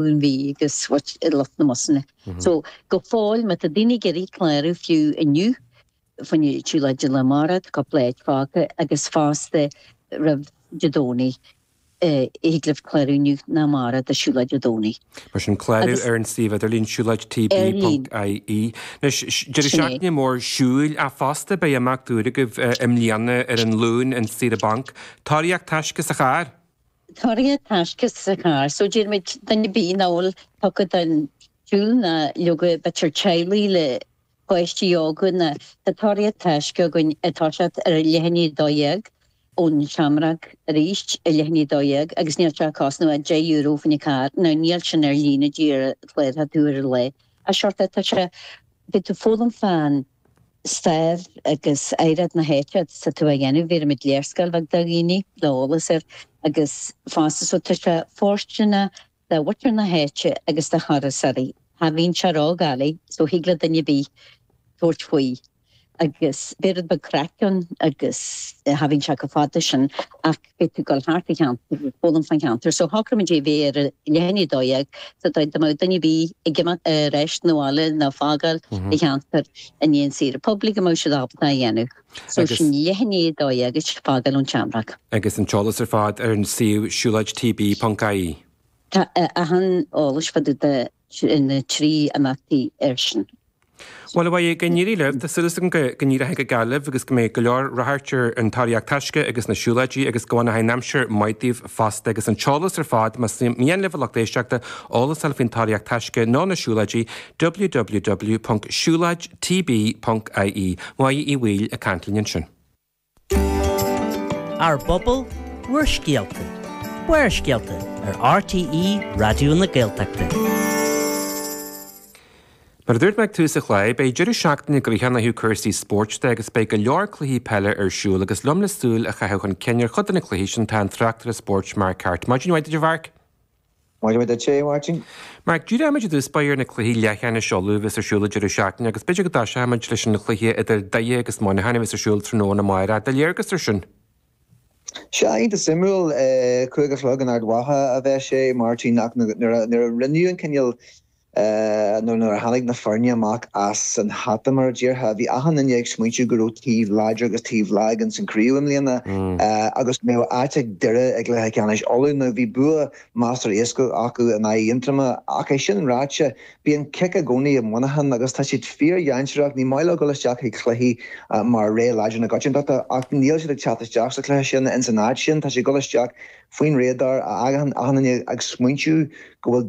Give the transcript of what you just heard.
Dún Bhí agus what i lucht na mbusanna so go fóill má tá daoine ag iarraidh clárú fiú inniu fá choinne siúlóid lá amárach tá cúpla áit fágtha agus fosta roimh Dé Domhnaigh eh thig libh clárú inniu nó amárach do siúlóid Dé Domhnaigh. Mar sin clárú ar an suíomh idirlín siúlóid TB ponc IE. Anois deireadh seachtaine mór siúil ach fosta beidh imeacht úr agaibh i mbliana ar an Luan an saoire banc. Tóraíocht taisce sa charr! Tóraíocht taisce sa charr so dúirt muid duine ar bith nach bhfuil tugtha don tsiúl nó leoga b'fhéidir teaghlaigh le páistí óga ná tá tóraíocht taisce againn ag toiseacht ar leath i ndiaidh a dó dhéag ón Shamrock arís ar leath i ndiaidh a dó dhéag agus níl sé ag cosnamh ach deich euro fá choinne carr now níl sin ar líne díreach cláróchaidh tú ar an lá agus an seort atá sé beidh tú ag foghlaim fán stair agus oidhreacht na h-áite is tú á dhéanamh. Bhéarfaimid léarscáil bheag do dhaoine le eolas air agus fosta so tá sé fóirsteanach do mhuintir na h-áite agus do thurasóirí. Cha bhíonn sé ródhoiligh so thig le duine ar bith tabhairt faoi agus beidh rud beag craic ann agus cha bhíonn sé chomh fada sin ach. Beidh tú ag dul thart an cheantar ag foghlaim fán cheantar so shocraigh muid é a bheith ar a leath i ndiaidh a dó dhéag so dá mbeadh duine ar bith ag imeacht ar ais 'na bhaile nó ag fágáil an cheantar i ndiaidh an saoire poiblí go mbeadh siad ábalta é a dhéanamh. So sin leath i ndiaidh a dó dhéag is fágáil ón tSeamróg. Agus an t-eolas ar fad ar an suíomh siúlóid TB ponc IE. Tá achan eolas fá dtaobh de na trí imeachtaí air sin. Bhuel, a Mhaggie, go n-éirí libh. Tá súil 's agam go go n-éireochaidh go geal libh agus go mbeidh go leor ráchairt ar an Tóraíocht Taisce agus na siúlóidí agus go bhfanochaidh an aimsir maith daoibh fosta agus an t-eolas ar fad, más mian libh a lucht éisteachta eolas a fháil faoin Tóraíocht Taisce nó na siúlóidí, www.siuloidtb.ie. Maggie Uí Bhaoill ag caint linn ansin. Ár bPobal, bhur scéalta. Barrscéalta ar RTÉ Raidió na Gaeltachta. Mar a dúirt mé ag tús an chláir, beidh deireadh seachtaine gnoitheach ann ó thaobh cúrsaí spóirt de agus beidh go leor cluichí peile ar siúl agus liom le súil a chaitheamh chun cinn ar chuid de na cluichí sin atá an tráchtaire spóirt Mark Harte maidin mhaith duit a Mharc Maidin mhaith duitse, Máirtín. Mark, Díreoimid i dtús báire ar na cluichí leathcheannais Uladh a bheas ar siúl an deireadh seachtaine agus b'fhéidir go dtoiseochaimid leis an chluiche idir Doire agus Muineachán a bheas ar siúl tráthnóna amárach. Do léargas ar sin. Sea, iontach suimiúil. Cúig a chlog in Ard Mhacha a bheas sé, Máirtín, ach nuair a rinneadh an cinneadh, nó nuair a tháinig na foirne amach as an hata, mar a déarfá, bhí achan duine ag smaointiú go raibh taobh láidir agus taobh lag ins an chraobh i mbliana agus go mbeadh áit ag Doire i gcluiche ceannais Uladh. Now bhí bua measartha éascaí acu in aghaidh Aontroma ach é sin ráite, bíonn cic i gcónaí i Muineachán agus tá siad fíor-dhainséarach, ní maith leo dul isteach chuig cluichí mar rogha láidir na coitiantachta ach níl siad ag teacht isteach sa chluiche sin ins an áit sin, tá siad ag dul isteach faoin radar, achan duine ag smaointiú go bhfuil.